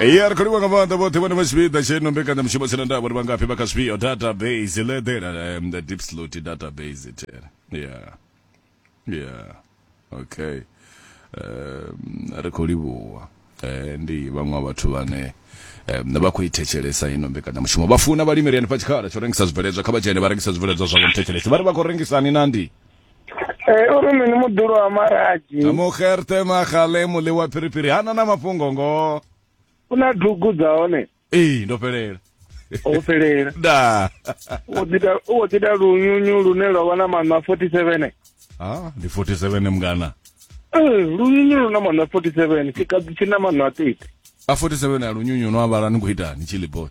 iye ari kholiwa nga maanḓa vhoṱhe vhane vha tshipiḓa tsheno mbekanyamushumo tsena nda vhori vhangafhi vha kha zwifhio database ledela um, the deep slot database tere yeah yeah okay um, ri khou livhuwa eh, ndi vhaṅwe wa vhathu vhane um, vha khou i thetshelesa ino mbekanyamushumo vha funa vhalimeri hanefha tshikhala tsho rengisa zwibveledzwa kha vha dzhene vha rengisa zwibveledzwa zwavho muthetshelesi vha ri vha khou rengisani na ndi Eh, uri mini mudulo wa maraji mugerte magale mole wa phiriphiri ha na na mafhungo ngo u na dugu dza hone ee ndo fhelela ho fhelela da u wo ḓita lunyunyu lune lwa vha na maṋa 47 ha ndi 47 mngana ee eh, lunyunyu lu na maṋa 47 tshikadzi tshi na maṋa a 30 a 47 a lunyunyu no avhala ni khou itani tshiliboni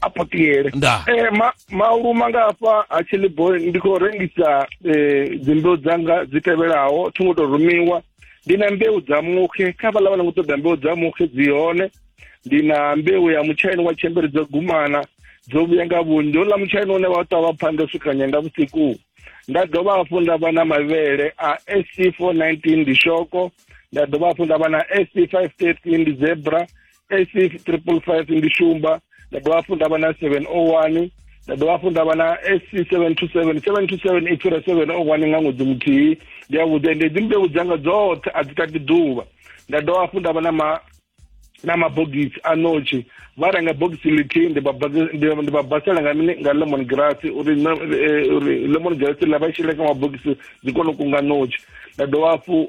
a potiyele Nda. eh ma mauluma nga hafha ha chilibo ndi khou rengisa eh dzimbeu dzanga dzi tevhelaho thi ngo to rumiwa ndi na mbeu dza muxe kha vhala vhala ngo ṱoḓa mbeu dza muxe dzi hone ndi na mbeu ya mutshaini wa tshembere dzo gumana dzo vhuya nga vhunzhi houḽa mutshaini une wa ṱavha phanda swika nyenda vhusiku nda dovha hafhu nda vha na mavhele a sc 419 ndi shoko nda dovha hafhu nda vha na sc 513 ndi zebra S triple five ndi shumba nda dovha hafhu nda vha na seven o oh one nda dovha hafhu nda vha na sc seven two seven seven two seven i fhira seven o oh one nga ṅwedzi muthihi ndi yavhuḓi ende dzi mbeu dzanga dzoṱhe a dzi tati ḓuvha nda dovha hafhu nda vha na ma na mabogisi a notshi vha renga bogisi lithihi ndi vha basela nga mini nga lemon grass uri eh, uri lemon grass ḽa vha shele kha mabogisi dzi kone u kunga notshi nda dovha hafhu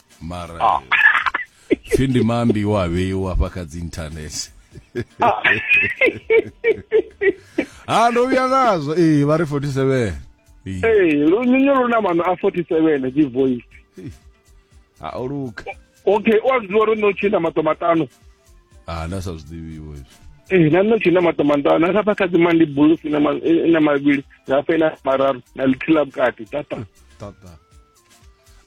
mara ah. pfi ndi mambi wa vheiwa hafha kha dzi internet ah. ha ah, ndo vhuya ngazwo ee vha ri 47 ee lunyunyu lu na mano a 47 dzi voice ha o luka okay o a zwi ḓivha uri no tshina mato matano ha nda sa zwi ḓivhiwo izwo ee na nno tshina mato matano a hafha kha dzi mandi bulusi na mavhili hafha ina mararu na lithihi ḽa vhukati tata tata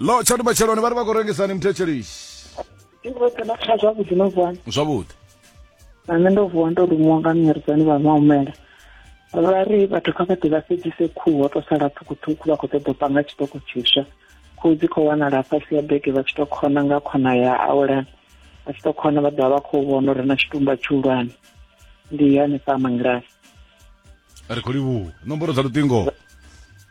lo tshani matsheloni vha ri vha khou rengisani muthetshelishi zwavhuḓi no vuwani zwavhuḓi na nṋe ndo vuwa ndo lumiwa nga mnyaredzani vha mahumela vha ri vhathu kha vha ḓi vha sedzise khuhu ho to sala ṱhukhuṱhukhu vha khou ṱoḓa u panga tshiṱoko tshiswa khuhu dzi khou wanala fhasi ya bege vha tshi to khona nga khona ya awelana vha tshi to khona vha ḓovha vha khou vhona uri na tshitumba tshihulwane ndi hanefha mangilani ri khou livhuwa nomboro dza luṱingo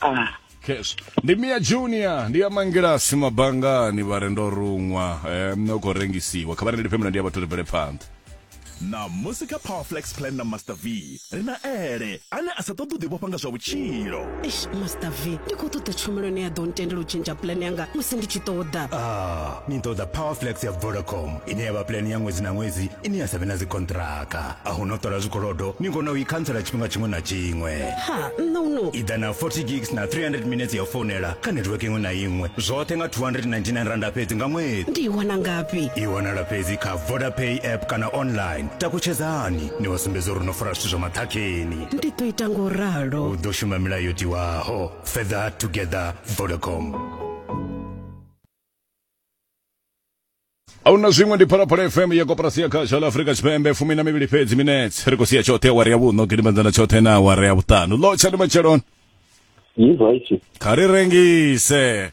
Ah. cash ndi mia junior ndi ya mangilasi mabangani vha re ndo ruṅwa um, u khou rengisiwa kha vha rengele phemulo ndi ya vhathu ri bvele phanḓa ṋamusi kha powerflex plan na master v ri na ele ane a sa ṱoḓi u ḓivhofha nga zwa vhutshilo eish master v ndi khou ṱoḓa tshumelo ine ya ḓo ntendela u tshentsha pulane yanga musi ndi tshi ṱoḓa Ah, ni ṱoḓa powerflex ya vodacom ine ya vha pulani ya ṅwedzi na ṅwedzi ine ya sa vhe na dzikontraka a hu no ṱola zwikolodo ni kona u i khantsela tshifhinga tshiṅwe na tshiṅwe ha nṋe uno i ḓa na 40 gigs na 300 minutes ya u founela kha network iṅwe na iṅwe zwoṱhe nga 299 randa fhedzi nga ṅwedzi ndi i wana ngafhi i wanala fhedzi kha vodapay app kana online takutshedzani ni wa sumbedza uri no fara zwithu zwa maṱhakheni ndi ḓo ita ngo ralo u ḓo shuma milayo tiwaho further together vodacom ahuna zwiṅwe ndi phalaphala fm ya koporasi ya khasha la afurika tshipembe fumi na mivhili fhedzi minets ri khou sia tshoṱhe awari ya vhuṋo gidimedzana tshoṱhe na awari ya vhuṱanu lotsha ndi matsheloni Yes, right. kha ri rengise